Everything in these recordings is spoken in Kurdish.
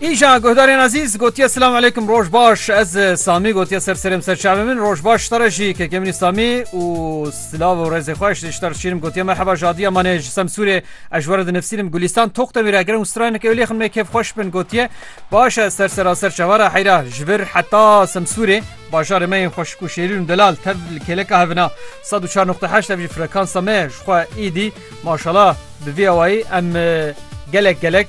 Îja guhdarên ezîz gotiye silam aleykum roj baş ez e, Samî gotiye ser serêm ser çavê min roj baş tare jî kekê minî Samî û silav û rêzê xweş ji ter şîrim gotiye merheba jadiya manê ji semsûrê ez ji were di nifsînim gulîstan toq te mîre girin û straynek ewlê xin me kêf xweş bin gotiye baş ez ser sera ser çavara heyra ji vir heta semsûrê bajarê me yên xweşik û şêrîn û delal tev li kêleka hevina 104.8 ev jî frekansa me ji xwe îdî Maşala bi vî awayî em gelek gelek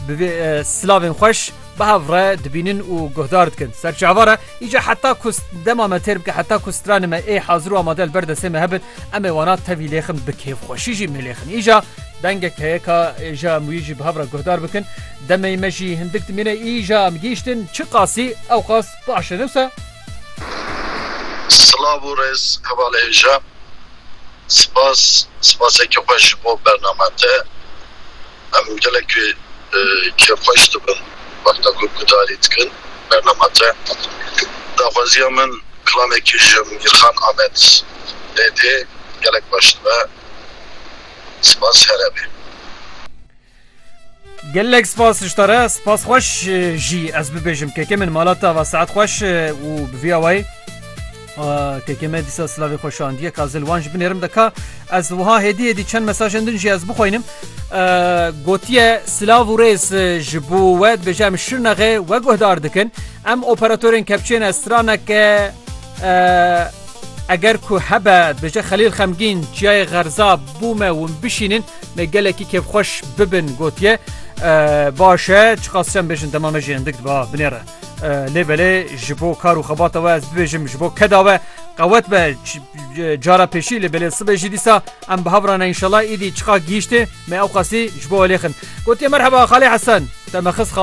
bi vî silavên xweş bi hev re dibînin û guhdar dikin. Ser çi ava re? Îca heta ku dema me têr bike heta ku stranê me ê hazir û amade li ber destê me hebin em ê wana tevî lêxin bi kêfxweşî jî mêlêxin. Îca dengek heye ka êja em wî jî bi hev re guhdar bikin. Demê me jî hindik dimîne îja em gihîştin çi qasî ew qas baş e ne wisa? Silav û rêz hevalê êja. Spas, spaseke xwe ji bo bername te. Em gelek kêfxweş dibin wexta ku gudarî dikin bernama te. Daxwaziya min klamekî ji Mîrxan Amed lê tê, gelek baş dibe. Spas here be. Gelek spas ji te re spas xweş jî ez bibêjim kekê min mala te va saet xweş û bi vîya wayê kekê me dîsa silavê xwe şandiye ka zil wan ji binêrim de ka ez wiha hêdî hêdî çend mesajên din jî ez bixwînim gotiye silav û rêz ji bo we dibêje em şirnexê we guhdar dikin em operatorên kepçên ez straneke eger ku hebe dibêje xelîl xemgîn çiyayê xerza bû me hûn bişînin Me gelekî kêfxweş bibin gotiye baş e çiqas çem bêjin dema me jî endik diba binêre. Lê belê ji bo kar û xebata we ez bibêjim ji bo keda we qewet be cara pêşî lê belê sibê jî dîsa em bi hev rane înşela îdî çiqa gihîştê me ew qasî ji bo welêxin. Gotiye merheba Xalê Hesen te me xist xalo